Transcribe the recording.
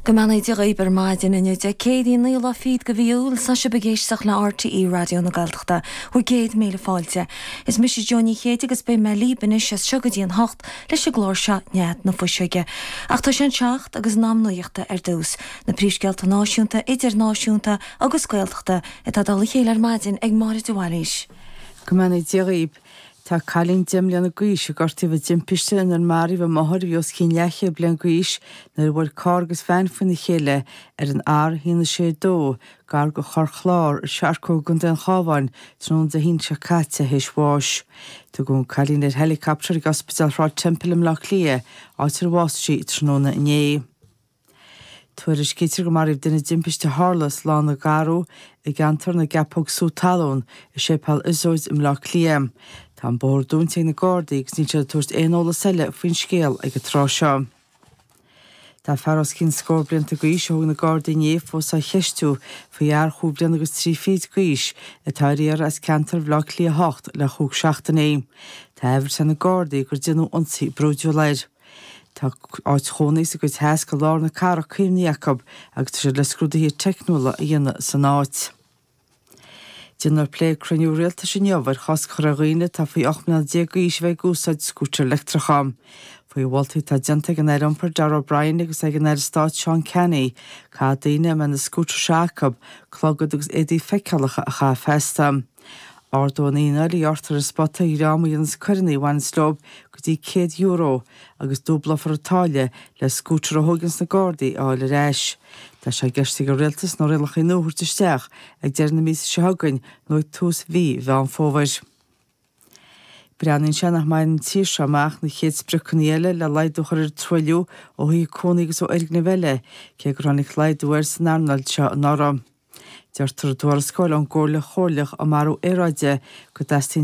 Go mbeannaí Dia dhaoib ar maidin inniu Dé Céadaoin 9ú lá fichead go mhí Iúil is sibh ag éisteacht le RTÉ Raidió na Gaeltachta bhur gcéad míle fáilte. Is mise Jo Ní Chéide agus beidh mé líb anois as seo go dtí an hocht leis an gclár seo Nead na Fuiseoige. Ach tá sé an seacht agus in am nuaíochta ar dtús. Na príomhscéalta náisiúnta, idirnáisiúnta agus Gaeltachta atá i dtoll a chéile ar maidin ag Máire de Bhailís. Go mbeannaí Dia dhaoib. Tá cailín deich mbliana gaois a gortaíodh i dtimpiste inar maraíodh a máthair a bhí os cionn leathchéad bliain gaois nuair a bhuail carr agus veain faoina chéile ar an R162 gar go Chorr Chlár i Searcóg i gContae an Chábháin tráthnóna Dé hAoine seo caite théis bháis. Tugadh an cailín ar héileacaptar ag Ospidéal Shráid Temple i mBleá Cliath, áit ar bhásaigh sí tráthnóna inné. Tuairiscítear go maraíodh duine i dtimpiste a tharla sa Lána Garbh i gceantar na gCeapóg Sú Talún i Séipéal Iosóid i mBleá Cliath. Tá an bóthar dúnta ag na Gardaí agus níl siad ag tabhairt aon eolas eile faoin scéal ag an tráth seo. Tá fear os cionn scór blianta gaois a thóg na Gardaí inné fós á cheistiú faoi fhear chúig bliana agus trí fichid gaois atá ar iarraidh as ceantar Bhleá Cliath 8 le chúig seachtaine. Tá an bharúil ag na Gardaí gur déanadh ionsaí brúidiúil air. Tá áit chónaí sa gcuid theas go lár na cathrach caomhnaithe acu agus tá siad le scrúduithe teicniúla a dhéanamh san áit. Déanfar plé ag cruinniú rialtais inniu ar chosc a chur ar dhaoine atá faoi 18 mbliana d'aois a bheith ag úsáid scútair leictreacha. Faoi mholtaí atá déanta ag an Aire Iompair Darragh O'Brien agus ag an Aire Stáit Seán Canney, caithfidh daoine a mbeidh na scútair seo acu clogad agus éadaí feiceálacha a chaitheamh feasta. Ardóidh an fhíneáil a ghearrtar ar an spota ar dhream a dhéanas coireannaí a bhaineas leob go dtí €100 agus dúblófar an táille le scútar a thóigeanns na Gardaí a fháil ar ais. Tá sé i gceist ag an Rialtas na rialachaí nua a thabhairt isteach ag deireadh na míosa seo chugainn nó ag tús mhí Mheán Fómhair. Breathnaíonn sé nach mbainfidh an tír seo amach na chéad spriocannaí eile le laghdú a chur ar an truailliú ó thithe cónaí agus ó fhoirgnimh eile, cé gur tháinig laghdú air san earnáil seo anuraidh. Deirtear i dtuarascáil ón gComhairle Chomhairleach um Athrú Aeráide go dteastaíonn